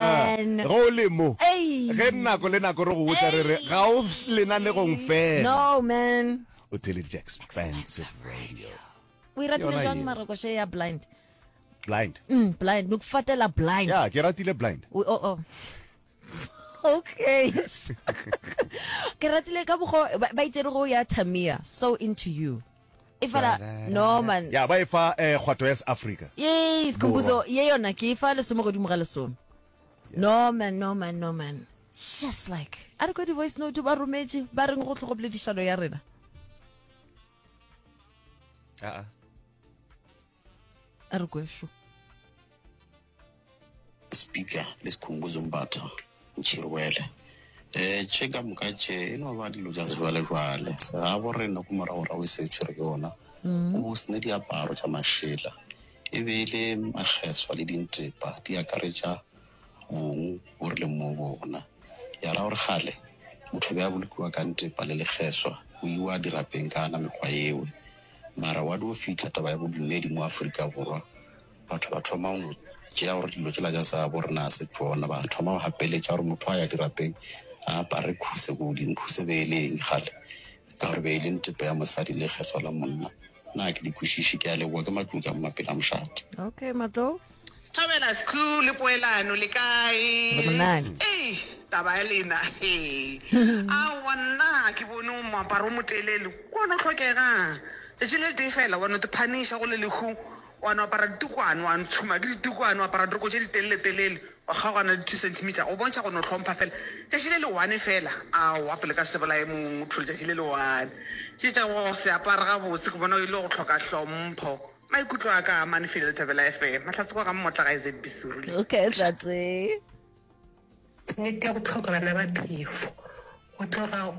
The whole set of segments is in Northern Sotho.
Amen. Ge o le mo, Ei. ge nako le nako re go botsa re re, ga o s- lenanegong fela. No, man. O theleditše Expensive Radio. O e ratile Yona jwang ye. marokoše ya blind? Blind. Mm, blind. No kufatela blind. Ya, ke ratile blind. O- o- o. Okay. ke ratile ka bogo ba ba itse re go ya Tamia so into you. efela norman ya ba e fa eh, kgwato ya seafrika ye sekhumbuzo ye yona ke e fa lesome godimo ga lesome norman norman norman just like a re kwa di-voice note ba rometše ba reng go tlhogo boledišano ya rena Ah, ah. a re kwešo speaker le sekhumbuzo mbatha ntšhirwele um eh, tše ka moka tše e no ba dilo tša sejwalejwale segabo re ne ko moragorago e se e tshwere ke ona mm. o sene diaparo tša mašela e be e le makgeswa le dintepa di akaretša Mong o rile mo go ona, Ya ra gore kgale motho o be a bolokiwa ka ntepa le lekgeswa, go iwa dirapeng ka ana mekgwa yewe. Mara wa dio fihla taba ya bodumedi mo Afrika Borwa, batho ba thoma go no tšea gore dilo tšela tša sa bo rena ga se tšona, ba thoma go gapeletša gore motho a ya dirapeng a apare khuse ko godimo. Khuse be e le eng kgale? Ka gore be e le ntepa ya mosadi le lekgeswa la monna. Na ke di kwešiši? Ke a leboga. Ke Matlou ka mo Mapela Mošate. Okay, Matlou. Thabela Skhlu le poelano le kae? Re monate. Ei taba ya lena he. Aowa nna ga ke bone o moaparo o motelele o wa no tlhokega. Tšatši le letee fela wa no te phaniša go le lehu wa no apara ditukwane wa ntshuma ke ditukwane wa apara diroko tše ditelele telele wa kgaogana le two centimeter go bontšha go no hlompha fela tšatši le le one fela. Aowa pele ka se bolaye motho letšatši le le one. Tše tša go se apare gabotse ke bona e le go hloka hlompho. Maikutlo a ka man feel Thobela FM. Mahlatse kwa ga mmotla ga ZB Surule. Okay, Tlatse. Nnete ya go tlhoka bana ba phefo go tloga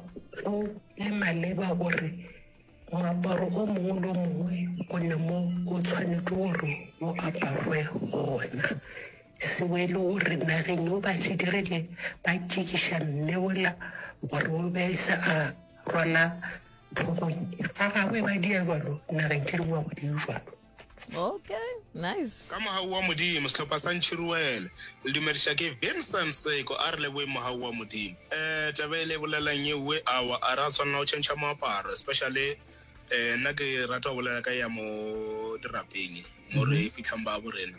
go le maleba gore moaparo o mongwe le o mongwe o ne mo o tshwanetse gore o aparwe gona. Sewelo o re nageng yo ba se dirile ba tšikiša mme ola gore o be se a rwala Tlhogong ga gagwe ba dia jalo nageng Tšhiruwa go diu jalo. Okay, nice. Ka mohau wa Modimo, sehlopha sa Ntšhiruwele le dumediša ke Vincent Seko. A re leboeng mohau wa Modimo. Eh, taba ele e bolelela'ng ye uwe? Awa, a re a tshwanela go tšhentšha moaparo, especially eh, nna ke rata go bolela ka ya mo dirapeng mo re fitlhang ba bo rena.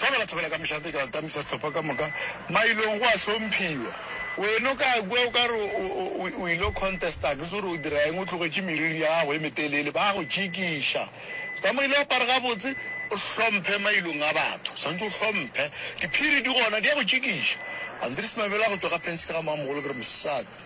Fela batho bala ka mešate ka atamisa sehlopha ka moka mailong go a hlomphiwa. Wena o ka kua o ka re o ilo contesta ke se gore o dira eng o tlogetše meriri ya gago e metelele ba go tšikiša. Tsamile o apare gabotse o hlomphe mailong a batho swanetše o hlomphe diphiri di gona di ya go tšikiša. Andries Mabela go tšwa ka phenšene ga mmamogolo ke re mosadi.